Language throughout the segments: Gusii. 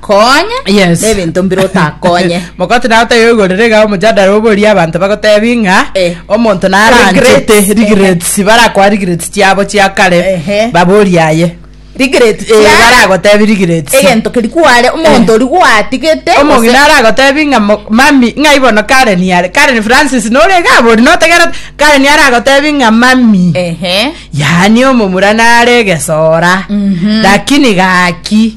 Konya Yes. nebinto mbire otakonye. Mogoti naye otayoigorera iga omojadara oboria abanto bagotebi ng'a Eh. omonto naranchete Regrets. regrets barakoa regrets chiabo chia kare Ehe. baborie aye Regret Eh, chia- baragotebi regrets egento keri kware omonto ori gwatigete omongi gose- naragotebi ng'a mo- mami ng'a ibono karen yare karen francis nore gabori notegerete karen aragotebi ng'a mami Ehe. yaani omomura nare egesora Mhm. lakini gaki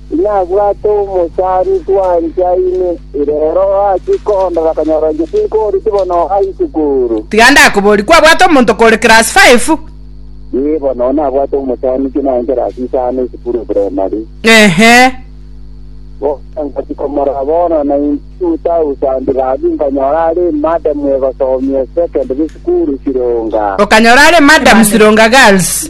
Inabwate omosani twanchaine, reero ase koondora akanyora inche tinkooreti bono oha isukuru. Tiga ndakoborie, kwabwate omonto kore class five? Ee, bono oo nabwate omosani inche nare class isano isukuru eprimary. Ehe. Bono ngochia komorora bono 92000 gaki nkanyora are emadamu egosomia secondary sukuru Sironga. Okanyora are emadamu Sironga Girls.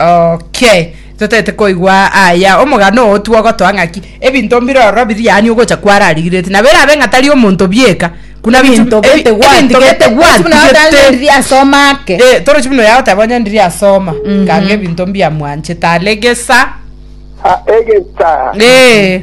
Okay, totete koigwa aya omogano oo twogotoa ng'aki ebinto mbire ororo biri yaani ogocha kwararigirete nabo erabe ng'a tari omonto bieka kuna bichu- Ebinto ebi- gete ebinto gwatigete, gete buna buna gwatigete. atang'a ndiri asoma ake. Eh, torochi buna oyagoteba onye ndiri asoma nkange ebinto mbiamwanchete are gesa Ah, egesa. Eh.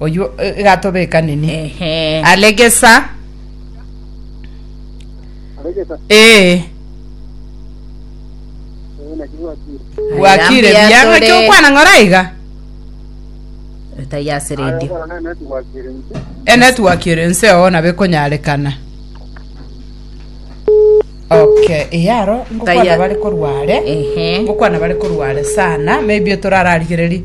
oywo eh, igatobeka nini Ehe. alegesa aregesa ee eh, naki gwakire gwakire Ayambia bia tore. ng'aki okwana ng'ora iga Tayase ayo radio. kora nene tigwakire nse enetwork ere nse oo nabe konyarekana okay eyaro ngokwana Taya- bare korware Ehe. ngokwana bare korware sana maybe torararigereri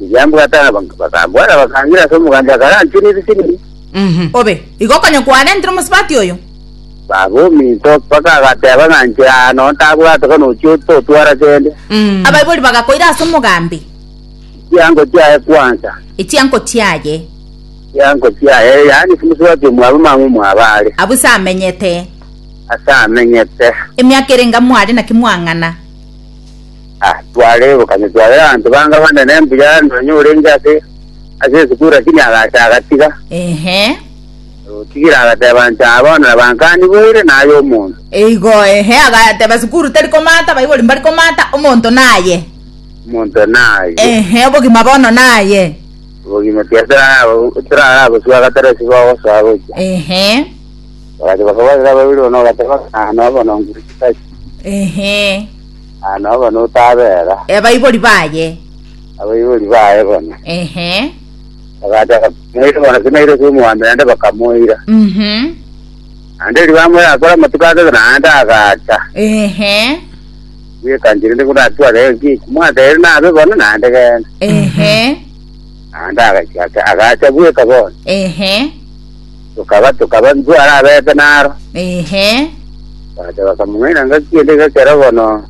Riria mbwatana bak- bakambwata bakangira ase omogancho akaranchwe nebisirini. Mhm. Obe, igo konya kwarentire omosubati oyo? Baba ominto mpaka agateba ng'a inche aa nonye tabwate bono ochia ototwara kende. Mm. Abaibori bagakoira ase omogambi. Chiango chiaye kwansa. Echianko chiaye. Chiango chiaye yaani omosubati omwabo mama omwabo are. Abwo ase amenyete. Ase amenyete. Emiaka erenge amo are naki mwang'ana. Ah, twaregokana, tware abanto banga bane ne mbuya, nonya orenge ase ase esukuru lakini agacha agatiga. Ehe. Otigire agateba nti, ah, bono nabankani boire naye omonto. Eigo ehe agateba sukuru teri komata baibori mbari komata omonto naye. Omonto naye. Ehe obogima bono naye. Obogima tiari torara- torara gosua gatera ase bagosoa gocha. Ehe. Bagacha bakabarera baibori bono bagateba, ah, no bono ngure chitachi. Ehe. Ah, nao bono otabera Abaibori baye. abaibori baye bono Ehe. bagataka moire bono sinaire ase omwami naende bakamoira Mhm. naende riba moire akore amatuko ake naende agacha Ehe. bwekanchire ndi kunatware enki kumwatere nabe bono naende genda Ehe. naende agacha agacha bweka bono Ehe. tokabatuka abariku ara abeete naro. Ehe. Bagacha bakamong'aina ngaki ende gekero bono,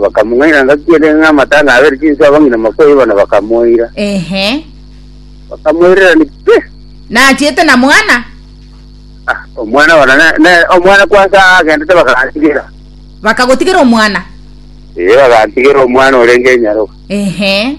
bakamong'aina ngaki ende ng'a amatanga abere chinsu abang'ina makoyi bono bakamoira. Ehe. Bakamoirerania pi! Nachiete na mwana? Ah, omwana bono ne, ne omwana kwansa agendete bakantigera. Bakagotigera omwana? Ee, bakantigera omwana orenge enyaroka. Ehe.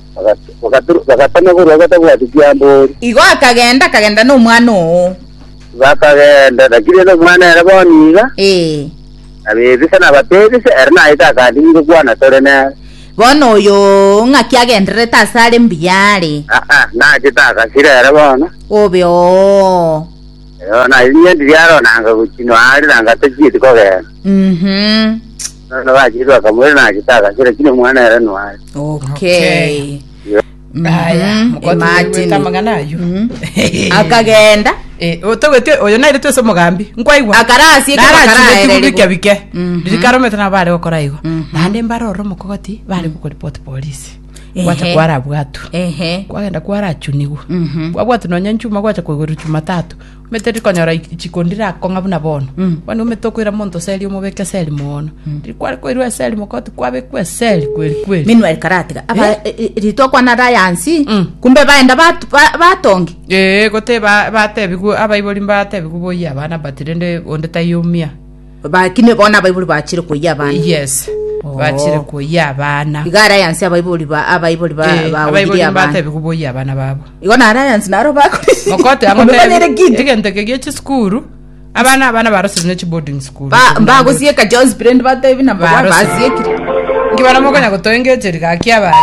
Bagat- bagatama korwa batabwati chiamboori, Igo akagenda, akagenda nomwana oo. bakagenda, lakini ere omwana ere bono iga Ee. abebisa nabatebise, ere naete akandiki ngokwana tore nere. Bono oyo ng'aki agendererete ase are mbuya are. Aa, nachete agasira ere bono, Obe oo. Eyo, na inye ndiri aro nanga gochinwa are nanga tachieti kogenda. Mhm. Nonya bachirwe akamwira naki tagasi lakini omwana ere noare. okay Aya, Mhm, mokoti imagine. nigwete amang'ana ayio. Mhm. akagenda Eh, o- togwete oyo naire twese omogambi nkwaigwa Akarasie ekero bakaraereri bike bo. bike Mhm. ririkaromete nabo bare gokora igo Mhm. naende mbare ore omokogoti bare gokoripoti polisi Ehe. gwacha kwara bwatu ehe kwagenda kwarachunigwa Mhm. kwabwatu nonya nchuma gwacha koigorwa chuma tatu Omanyete rikonyora i- ichiko ndirakong'a buna bono bono omanyete okoira monto eseri omobeke eseri mono riria kware koirwa eseri mogoti kwabekwa eseri kweri kweri minwe rikaratiga aba Eh? e- e- ritokwa naro ayansi Mm. kumbe baenda bat- ba- batongi ee gote ba- batebigwe abaibori mbatebigwe boyia abana but rende onde taiyo mia Baki nigo bono abaibori bachire koyia abana. Yes. Oh. Bachire koyia abana. Iga alliance abaibori ba abaibori ba Eh, ba abaibori ogiria abana. mbatebi koboyia abana babo. Igo na alliance naro bakore. Mokote yango Omekanere tebi, kintu. egento eke gie chisukuru, abana abana barosire ne chiboarding school. Ba mbagosieka John's brand batebi na baba Barose. basiekire. Ngibana mokonya gotoengecheria gaki abana.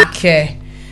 Okay.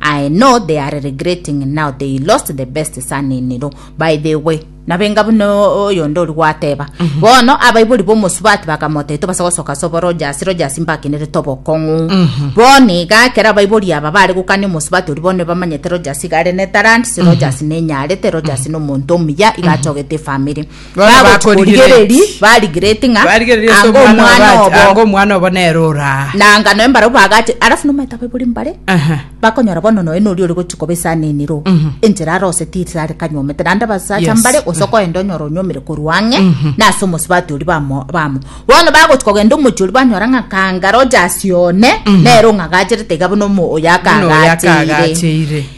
I know they are regretting now they lost the best son in law by the way nabenga buna oyonde ori gwateba bono abaibori bomosubati bakamoteba tobasa gosoka sobo rogers rogers mbakenerete obokong'u bono iga ekero abaibori aba bare gokania omosubati ori bono bamanyete rogers iga are ne talent si rogers nenyarete rogers nomonto omuya iga achogete efamiri Bono bagotorigereri bagorigereti. barigereti ng'a Barigereri ase anga omwana omwana obo ati, anga obo omwana obo nere ora. na anga noe mbarabwo bagache alafu nomaete abaibori mbare Aha. bakonyora bono noe nori ore gochia koba esanenero enchera aroseti risare kanyomete naende abasacha Yes. mbare gose okoenda onyora onyomire korwa ang'e na ase omosubati oria bamo bamo bono bagochia kogenda omochie oria banyora ng'a kangare oja ase one nere ong'agacherete iga buna omo oyo Buna oyo akagacheire akagacheire.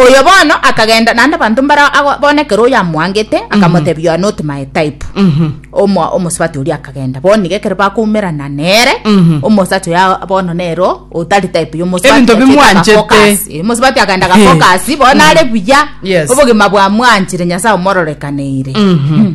Oyo bono akagenda naende abanto mbare ago- bono ekero oyo amoangete akamotebia oyo not my type Omo- omosubati oria akagenda bono nigo ekero bakoumerana nere Mhm. omosubati oyo bono nero otari type ya omosubati Ebinto achiete bimwanchete. agafocus. Eh, omosubati akagenda agafocus bono are buya Yes. obogima bwamwanchire nyasae omororekaneire Mhm.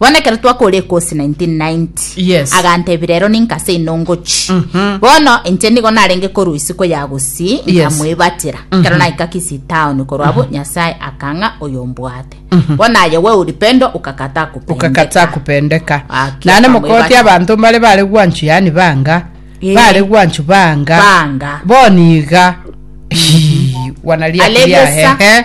Bono ekero twakora ekosi 1990 Yes. agantebia rero ninka ase ino ngochi Mhm. bono inche nigo narenge korwa isiko ya gusii Yes. nkamwebatera ekero naika kisi town korwa abo nyasaye akang'a oyo mbwate bono aye we ulipendo ukakataa kupendeka. ukakataa kupendeka Aki, nane akamwebata. mokoti abanto mbare bare gwanchu yani banga Eh. bare gwanchu banga Banga. boniga Hii, wanaliakiria Alegesa. hehe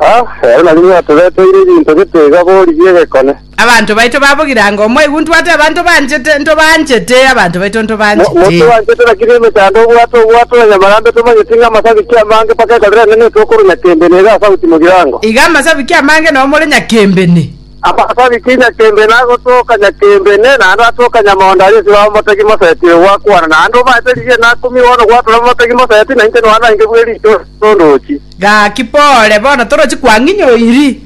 Ah, ere nari nigo atoreteire ebinto gete iga bori bi'egekone. Abanto baito babogire anga omwaigu ntwate abanto banchete, ntobanchete, abanto baito Mo- ntobanchete. Motobanchete rakini emechando obwate obwate na nyamarambe tomanyeti ng'a amasabiki amange mpaka ekero rende netokorwa nyakembene iga asauti mogirango. Iga amasabiki amange nao more nyakembene. Amasabiki nyakembene agotoka nyakembene, naende atoka nyamondo aria esiro abamotegi mosetire gwakwana, naende obaete rigiena akumigwe bono gwatura abamotegi mosetire, na inche noa nainge bw'ericho ase omotondo ochi. Gaki pore, bono toroche kwang'inye oiri.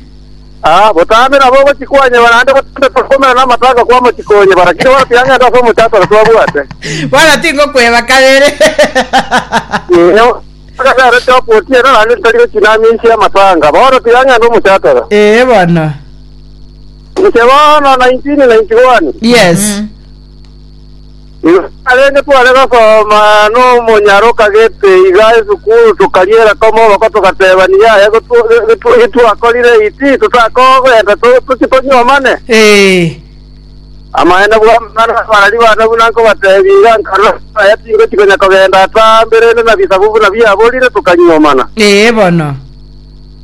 Aa, botambe nabo ogochia kwanyeba naende botambe kokomera namatanga kw'amachiko onyebara, kirie bono tiang'enta ase omochakore twabwate. Bono tingokweba kabere. Inee, otagarete okotiena naende titari gochia namia inse y'amatanga? Bono tiang'enta omochakore. Ee bono. Inche bono 1991. Yes. Igo narenge tware gosoma nomonyara okagete iga esukuru tokariera koma oboko togateba niyaye getwakorire eye ti totakogenda toche tonyuomane Ee. amaene bwamana abarari bana buna nkobatebia iga nkarora aya tingochi konya kogenda ata mberende na bisabu buna biaborire tokanyuomana Ee bono.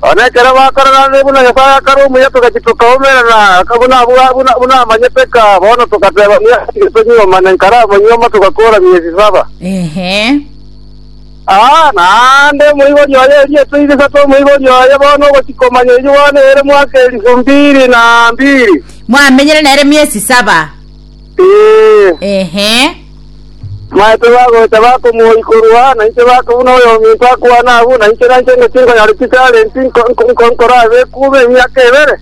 Bono ekero bakoraranire buna Nyasae akare omuya togachia tokaumerana buna abwo buna buna amanyete ka, bono togateba ng'a tiga tonyiomane nkare amanyioma togakora miezi saba. Ehe. Aa, naende omoibori oye erio etoigo isato omoibori oye bono ogochia komanya eyio bono ere mwaka elifu mbiri na mbiri. Mwamenyire nere miezi saba. Ee, Ehe. maete bagocha bakomoyi korwa, na inche baka buna oyominto akwana abwo, na inche nainche ingo chinkonyare chitarenti nko- nko- nko- nkorabe ekuume emiaka ebere,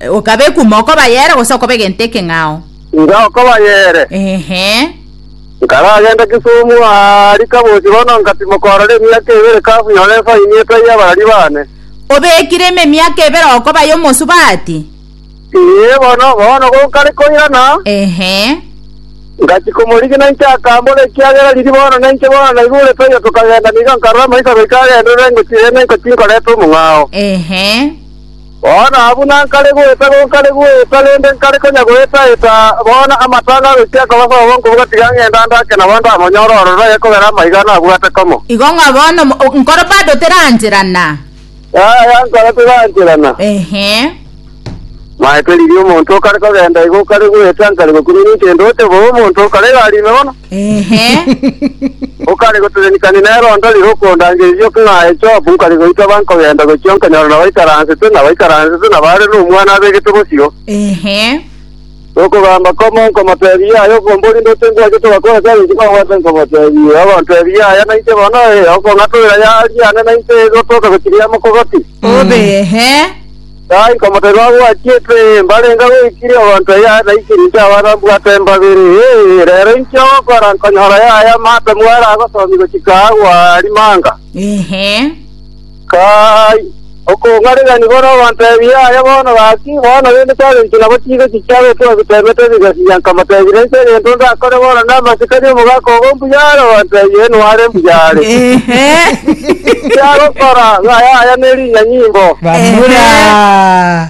Okabe ekuma okoba yere gose okobe gento ekeng'ao. inga okoba yere. Ehe. Nkaragenda Kisumu ari kabochi bono nkatimoka ororo emiaka ebere kabuya ore efaini etaiyo abarari bane. Obekire ime emiaka ebere okoba yomosubati. Ee, bono, bono gonkare koirana, Ehe. ngachi komorigina inche akambora, Ekiagera riria bono nainche bono naigurete oyo tokagenda nigo nkarora amaiso goika agenderere ngochie rende ngochie nkorete omong'ao. Ehe. Bono abwo nankare goeta gonkare goeta rende nkare konya goetaeta, bono amatanga agochia akobasa obo nkobuga tiga ng'enda ndake nabo ndamonyore ororo, ekogera amaiga nabwate komo. Igo ng'a bono mo- nkoro bado terancherana. Yaya nkare togancherana. Ehe. Maete riria omonto okare kogenda igo okare goeta nkare gokunyunia intende ote bo omonto okare iga arime bono. Ehe. Okare goterenikani nere ondo rire okondangereria oke ng'a aye Job nkare goita ba nkogenda gochia nkonyora nabaikaransete nabaikaransete na bare nomwana abegete bosio. Ehe. Gokogamba komo nkomoteebie aya okombori ndoche ngwachete ogakora ase agachiko agwate nkomoteebie ogonteebie aya nainche bono ee okong'atoera yaari yane nainche egotoka gochiria ya mokogoti. Obehe. Taa nkomoteebia agwachiete ee mbarenge agoikiria ogonto eye aye naikire inche abana mbwate embabere ee rero inki ogokora nkonyora yaya mate mware agosomia gochika agwa rimanga. Ehe. Kai, okong'aregani kore ogontebia aya bono gaki, bono rende twarenge nabo chiire chichia gokwa bitemete bigasiria nkamotebia, Inche egento ndakore bono namanyete tari omogaka obo mbuya are ogotebia Inwe are mbuya are. Ehe. Ekiagokora, ng'aya aya ne rinyanyimbo. Bamura.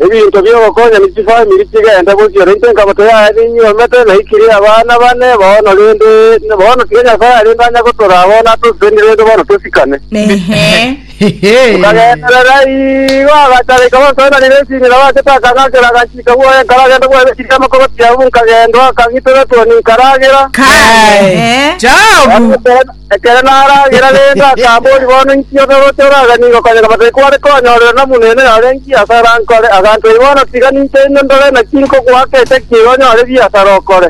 Ebinto bi'ogokonya ne chifamiri chigende gochia, nainche nkamote yaya ninyiomete, naikire abana bane bono, rende bono tiga Nyasae arende anya gotora abo natoseti rende bono tosikane. Tokagenderera igo agachareka bansoenanire ensinyo, nabo agachete akang'ankera aganchika bwoye, nkaragenda bwoye ne chiriama kobatiamwa, nkagenda akang'itera etwoni nkaragera. Kai. Chao bu. Ekero naragera rende akaboria, Bono inki otoroche oraganie igokonyeka batai kware konyorera nomonene ore nki asara nkore? Aganchori, Bono tiga ninche ime ndore naki nkogoa keche ki onyore ebiasara okore.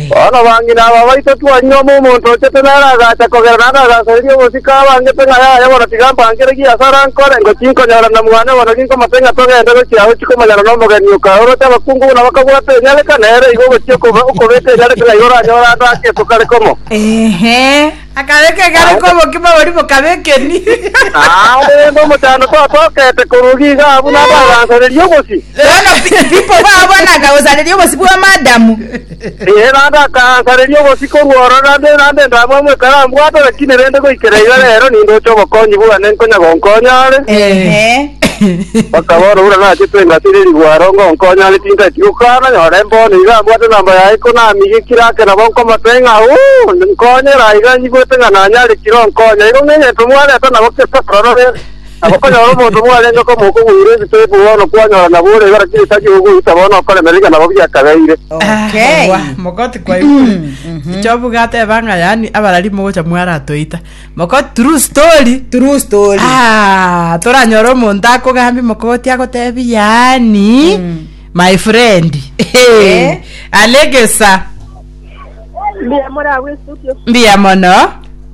Bono bang'ina aba baito twanyuoma omonto ochete nere agacha kogera naende agansoreria obosio. Tikabangete ng'a yaye bono tigampangire gi ase ara nkore, ngo tinkonyora na mwane bono ginkomate ng'a togende gochia agwo chikomonyana nomogeni o kaoroche abakungu buna bakabwate enyareka, nere igo ogochia okoba okobeka enyareka ng'a igo oranyore ande akeso kare komo. Akabeka egare komo obokima boria bokabekeni. Naende rende omochando twatokete koruga iga abwo nabo agansareria obosi. Bono people babo nakagosareria obosi bw'amadamu. Erande akansareria obosio korwa ororo, na erande ndamue amo ekero ambwate, rakini rende goikera iga rero nindoche obokonyi bwane nkonya gonkonya are. Bakabora, Buna nachete engaki ere rigwaro, ngonkonya are, tintageti gokana, nyora embono iga ambwate namba yaye ko namigekire ake nabo nkomote ng'a, Ooh, nkonyera aiga nyigwete ng'a nanyarekire onkonya. Igo ng'egento mwareta nabo kesa ororo rero. Nabo okonyora omonto mwarenge komo okogwera ebitebu, bono kwanyora nabo ore igoro chi'egeita gi'ogoita, bono okoremera iga nabo biakabeire. Okay. Ewa, mogoti kwaigure. Job gateba ng'a yaani abarari mogocha mwaratoita. Mogoti true story. True story. Ah, toranyore omonto akogambia mogoti agotebi yaani my friend. Eh. Alegesa. Mbuya moragwe studio. Mbuya mono.